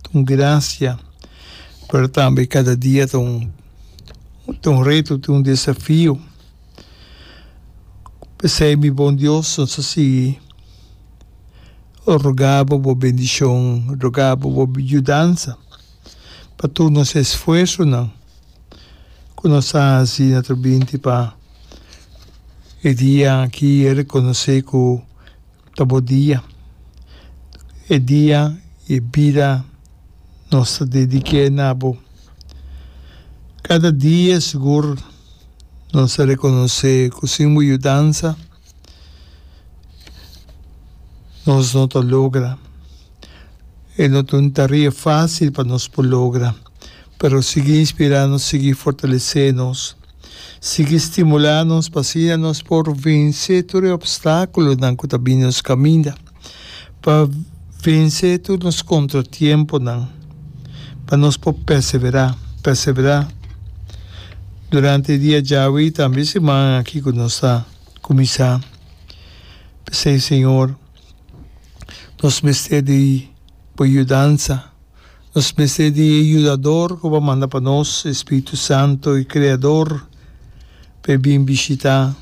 Ta un gracia, pero tambe cada dia ta un ta un reto, ta un desafio. Pesey mi bon Dios, nos a sigui roga bo bo bendicion, roga bo bo yudansa pa tur nos esfuersonan cu nos a haci na tur binti pa e dia aki reconoce cu Ta bo dia. E dia y e bida nos ta dedique na bo. Cada dia sigur nos ta reconoce cu sin bo yudansa nos no ta logra. E no ta un tarea facil pa nos por logra, pero sigui inspira nos, sigui fortalece nos. sigui stimulá nos pa asina nos por vensé tur e obstákulonan ku ta bini nos kaminda, pa vensé tur nos kontratiemponan, pa nos por pèseverá, pèseverá durante e dia djawe i tambe e siman aki ku nos ta kuminsá. P'esei, Señor, nos mester di Bo yudansa. Nos mester di e Yudador ku bo a manda pa nos, e Spiritu Santu, e Kreador, pa e bin bishitá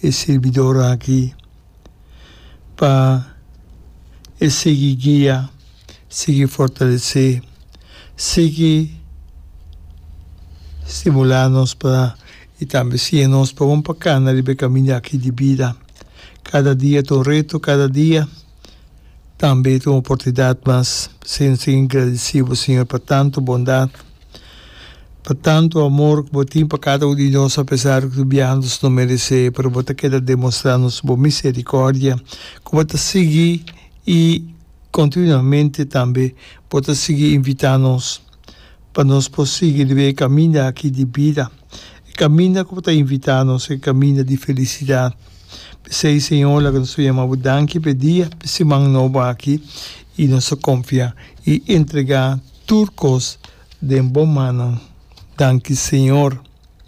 e sirbidornan akí, pa e sigui guia, sigui fortalesé, sigui stimulá nos pa i tambe siña nos pa bon pa kana riba e kamiña akí di bida. Kada dia ta un reto, kada dia. Tambe tin un oportunidat mas sin sin gradisí bo Señor pa tantu bondat, pa tantu amor ku bo tin pa kada un di nos apesar ku biaha nos no meresé pero bo ta keda demostrá nos bo miserikòrdia ku bo ta sigui i kontinuamente tambe bo ta sigui invitá nos. pa nos por sigui riba e kaminda aki di bida, e kaminda ku bo ta invitá nos, e kaminda di felisidat. P'esei, Señor, laga nos ta yama bo danki p'e dia, p'e siman nobo aki, i nos ta konfiá i entregá tur kos den bo mannan. Danki, Señor.